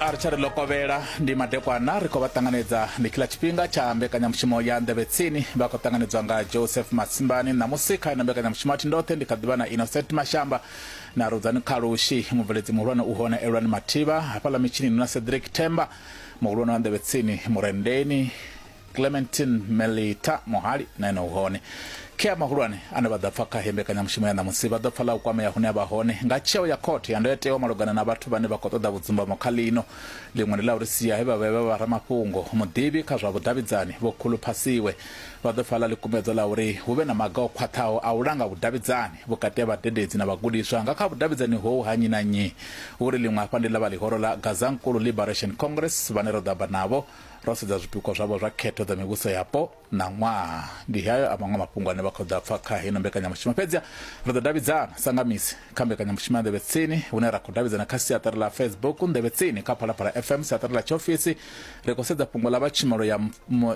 a ri tsha ri ḽo kovhela ndi madekwana ri khou vha ṱanganedza ndi khiḽa tshifhinga tsha mbekanyamushumo ya nḓevhe tsini vha khou ṱanganedzwa nga joseph matsimbani ṋamusi kha ino mbekanyamushumo a thi ndoṱhe ndi kha ḓivha na innocent mashamba na rudzani khalushi mubveledzi muhulwane u hone elwani mathivha hafhaḽa mitshini na cedric themba muhulwane wa nḓevhe tsini murendeni clementin melita muhali na ene u hone khea mahulwane ane vha ḓa pfa kha he mbekanyamushumo ya ṋamusi vha ḓo pfa ḽa u kwamea hune a vha hone nga tsheo ya khothe ya ndayotewa malugana na vhathu vhane vha khou ṱoḓa vhudzumbamo kha ḽino ḽiṅwe ndi ḽa uri sia he vha vhe vha vha ramafhungo muḓivhi kha zwa vhudavhidzani vho khuluphasiwe vha ḓo pfa ḽa ḽikumedzwa ḽa uri hu vhe na maga o khwaṱhaho a u langa vhudavhidzani vhukati ha vhadededzi na vhagudiswa nga kha vhudavhidzani hou ha nnyi na nnyi uri ḽiṅwe hafha ndi ḽa vha ḽihoro ḽa gazankulu liberation congress vhane ro ḓo amba navho ro sedza zwipikwa zwavho zwa khetho dza mivhuso yapo na ṅwaha ndi hayo a maṅwe mafhungo ane vha khou ḓa pfa kha hino mbekanyamushumo fhedzi ri ḓo davhidzana sa nga misi kha mbekanyamushumo ya nḓevhe tsini hune ra khou davhidzana kha siaṱari ḽa facebook nḓevhe tsini kha phalaphala fm siaṱari ḽa tshiofisi ri khou sedza fhungo ḽa vha tshumelo ya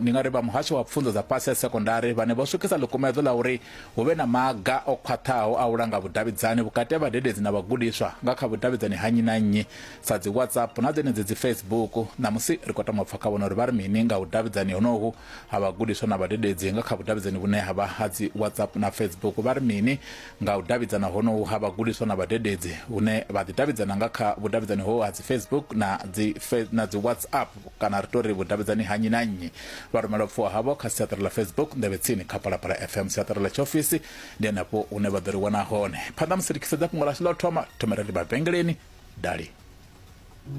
ndi nga ri vha muhasho wa pfunzo dza fhasi ya sekondari vhane vho swikisa ḽikumedzo ḽa uri hu vhe na maga o khwaṱhaho a u langa vhudavhidzani vhukati ha vhadededzi na vhagudiswa nga kha vhudavhidzani ha nnyi na nnyi sa dzi WhatsApp na dzenedzi dzi Facebook. Ṋamusi ri khou tama u pfa kha vhone uri vha ri mini nga vhudavhidzani honohu ha vhagudiswa na vhadededzi nga kha vhudavhidzani vhune ha vha ha dzi WhatsApp na Facebook. Vha ri mini nga u davhidzana honohu ha vhagudiswa na vhadededzi hune vha ḓi davhidzana nga kha vhudavhidzani ho ha dzi Facebook na dzi na dzi WhatsApp kana ri tori vhudavhidzani ha nnyi na nnyi. Vha rumela upfiwa havho kha siaṱari ḽa Facebook nḓevhe tsini kha Phalaphala FM siaṱari ḽa tshiofisi ndi henefho hune vha ḓo ri wana hone. Phanḓa musi ri tshi sedza fhungo ḽashu ḽa u thoma thomela ri mavhengeleni dali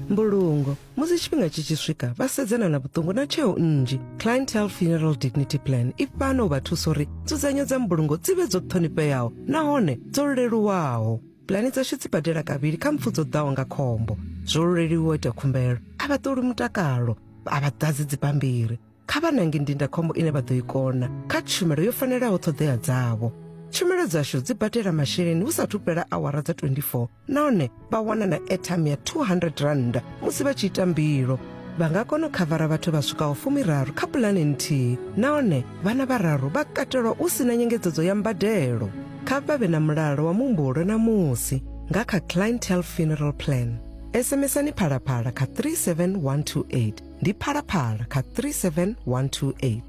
mbulungo musi tshifhinga tshi tshi swika vha sedzana na vhuṱungu na tsheo nnzhi clientele funeral dignity plan i fhano u vha thusa uri nzudzanyo dza mbulungo dzi vhe dzo ṱhonifheaho nahone dzo leluwaho pulani dzashu dzi badela kavhili kha mpfu dzo ḓaho nga khombo zwo leluwa ita khumbelo a vha ṱoli mutakalo a vha ḓadzi dzibammbiri kha vha nange ndindakhombo ine vha ḓo i kona kha tshumelo yo fanelaho ṱhoḓea dzavho tshumelo dzashu dzi badela masheleni hu sathu fhela awara dza 24 nahone vha wana na airtime ya 200 rand musi vha tshi ita mbilo vha nga kona u khavara vhathu vha swikaho fumiraru kha pulane nthihi nahone vhana vhararu vha katelwa hu si na nyengedzedzo ya mbadelo kha vha vhe na mulalo wa muhumbulo na musi nga kha clientele funeral plan sms-ani phalaphala kha 37128 ndi phalaphala kha 37128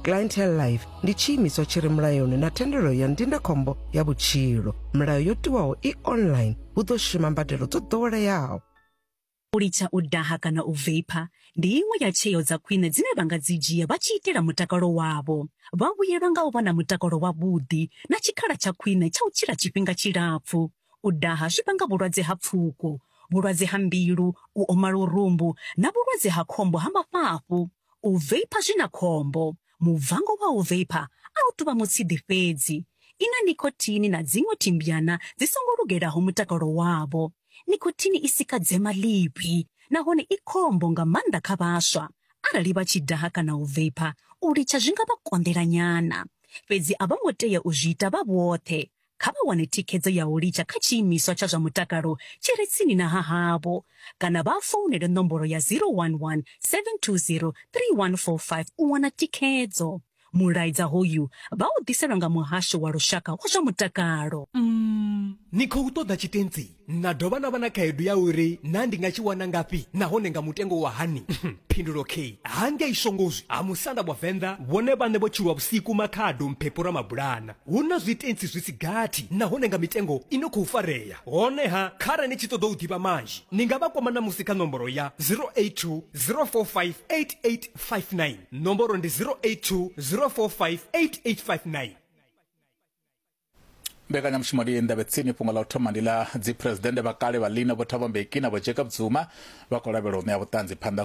clientele life ndi tshiimiswa tshi re mulayoni na thendelo ya ndindakhombo ya vhutshilo milayo yo tiwaho i online hu ḓo shuma mbadelo dzo ḓoweleaho u litsha u daha kana u veipa ndi iṅwe ya tsheo dza khwine dzine vha nga dzi dzhia vha tshi itela mutakalo wavho vha vhuyelwa nga u vha na mutakalo wavhuḓi na tshikhala tsha khwine tsha u tshila tshifhinga tshilapfu U daha zwi vhanga vhulwadze ha pfuko, vhulwadze ha mbilu, u oma lurumbu na vhulwadze ha khombo ha mafhafhu. U veipha zwi na khombo. Mubvango wa u veipha a u tou vha mutshidi fhedzi. I na nicotine na dziṅwe thimbyana dzi songo lugelaho mutakalo wavho. Nicotine i sika dzema ḽivhi nahone i khombo nga maanḓa kha vhaswa. Arali vha tshi daha kana u veipha, u litsha zwi nga vha konḓela nyana. Fhedzi a vho ngo tea u zwi ita vha vhoṱhe. kha vha wane thikhedzo ya u litsha kha tshiimiswa tsha zwa mutakalo tshi re tsini na ha havho kana vha founele nomboro ya 011 720 3145 u wana thikhedzo. Mulaedza hoyu vha u ḓiselwa nga Muhasho wa Lushaka wa zwa Mutakalo. Umm, ni khou ṱoḓa tshitentsi? na dovha na vha na khaedu ya uri na ndi nga tshi wana ngafhi nahone nga mutengo wa hani phindulo k hangei shongozwi ha musanda wa venḓa vhone vhane vho tshilwa vhusiku makhado mphepho ra mabulana hu na zwitentsi zwi si gathi nahone nga mitengo i no khou farea honeha khare ni tshi ṱoḓa u ḓivha manzhi ni nga vha kwama ṋamusi kha nomboro ya 082 045 8859 nomboro ndi 082 045 8859 mbekanyamushumo ndi ndavhetsini fhungo ḽa u thoma ndi ḽa dziphuresidennde vha kale vha lino vho thabo mbeki na vho jacob zuma vha khou lavhelwa u ṋea vhuṱanzi phanḓa